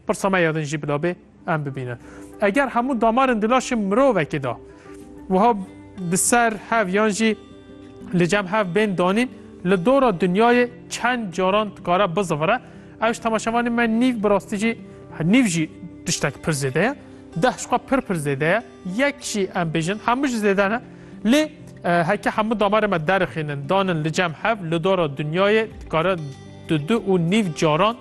Pirsa me ya din jî bila bê em bibînin. Eger hemû damarên di laşê mirovekê de wiha bi ser hev yan jî li cem hev bên danîn, li dora dinyayê çend caran dikare bizivire, ew ji temaşevanên me nîv bi rastî jî nîv jî tiştek pir zêde ye. Deh ji xwe pir pir zêde ye. Yek jî em bêjin hemû ji zêde ne. Lê heke hemû damarên me derixînin danin li cem hev li dora dinyayê dikare di du û nîv caran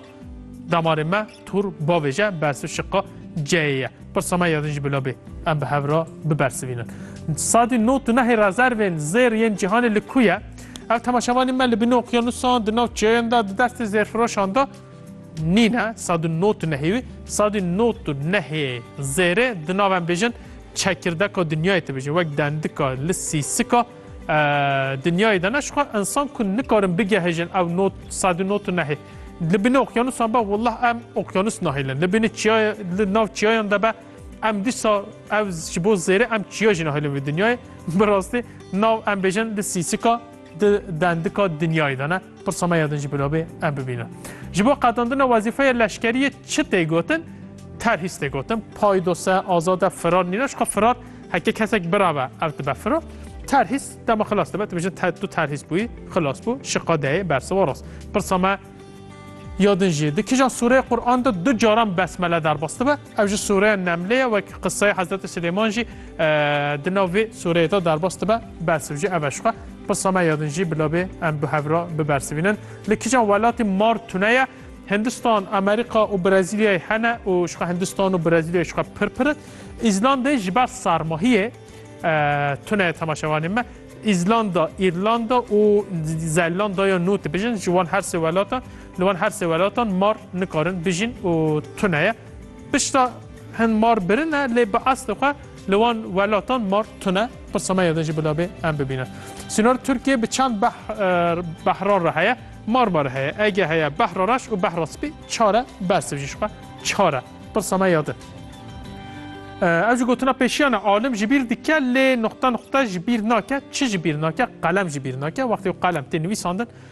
Damarê me tur bavêje bersiv şiqa ceyê ye. Pirsa me ya din jî bila bê em bi hev re bibersivînin. Sadî not û nehê rezervên zêr yên cîhanê li ku ye? Ev temaşevanên me li bin okyanusan, di nav çiyayan de, di destê zêrfiroşan de nîne. Sadî not û nehê wî. Sadî not û nehê zêrê di nav em bêjin çekirdeka dinyayê dibêjin. Wek dendika li sîsika Dinyayê de ne ji xwe insan ku nikarin bigehijin ew not sad û not û nehê. Li bînê okyanusan be wallah em okyanus nahêlin. Li bînê çiyaya li nav çiyayan de be em dîsa ev ji bo zêrê em çiya jî nahêlin vê dinyayê. Bi rastî nav em bêjin di sîsika di dendika dinyayê de ne. Pirsa me ya din jî bila bê em bibînin. Ji bo qadandina wezîfeya leşkeriyê çi tê gotin? Terhîs tê gotin. Paydose, azade, firar nîne. Ji xwe firar heke kesek birabe ev dibe firar. Terhîs dema xilas dibe. Tu bijin te tu terhîs bûyî, xilas bû, şiqa deyê, bersiva rast. Pirsa me ya din jî di kijan sûreyê Qur'an de du caran besmele derbas dibe. Ew ji sûreya Nemlê ye wek qiseyê Hezretê Silêman jî di nav vê sûreyê de derbas dibe, bersiv jî ev e ji xwe. Qisa me ya din jî bila bê em bi hev re bibersivînin. Li kîjan welatê mar tune ye? Hindistan, Amerîka û Brezîlyayê hene û ji xwe Hindistan û Brezîlyayê ji xwe pir pir in. Îzlandayê ji ber sarmahiyê tune ye temaşevanên me. Îzlanda, Îrlanda û Zelandaya Nû dibêjin ji wan her sê welatan. Li wan her sê welatan mar nikarin bijîn û tune ye. Pişta hin mar birin e lê bi eslê xwe li wan welatan mar tune. Pirsa me ya de jî bila bê em bibînin. Sînor Tirkiyê bi çend behran re heye? Marma re heye, ege heye, behra reş û behra spî çar e, bersiv jî ji xwe çar e. Pirsa me ya de. Ev jî gotina pêşiyan e, alim ji bîr dike lê nuqta nuqta ji bîr nake. Çi ji bîr nake? Qelem ji bîr nake. Wextê ku qelem tê nivîsandin,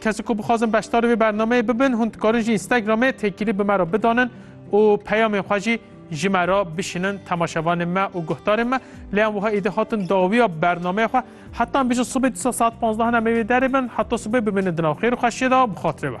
Kesên ku bixwazin beşdarî vê bernameyê bibin hûn dikarin ji Instagramê têkilî bi me re bidanin û peyamên xwe jî ji me re bişînin temaşevanên me û guhdarên me lê em wiha êdî hatin dawiya bernameya xwe heta em bêjin sibê dîsa saet panzdahan em ê wê derê bin heta sibê bimînin di nav xêr û xweşiyê de bi xatirê we.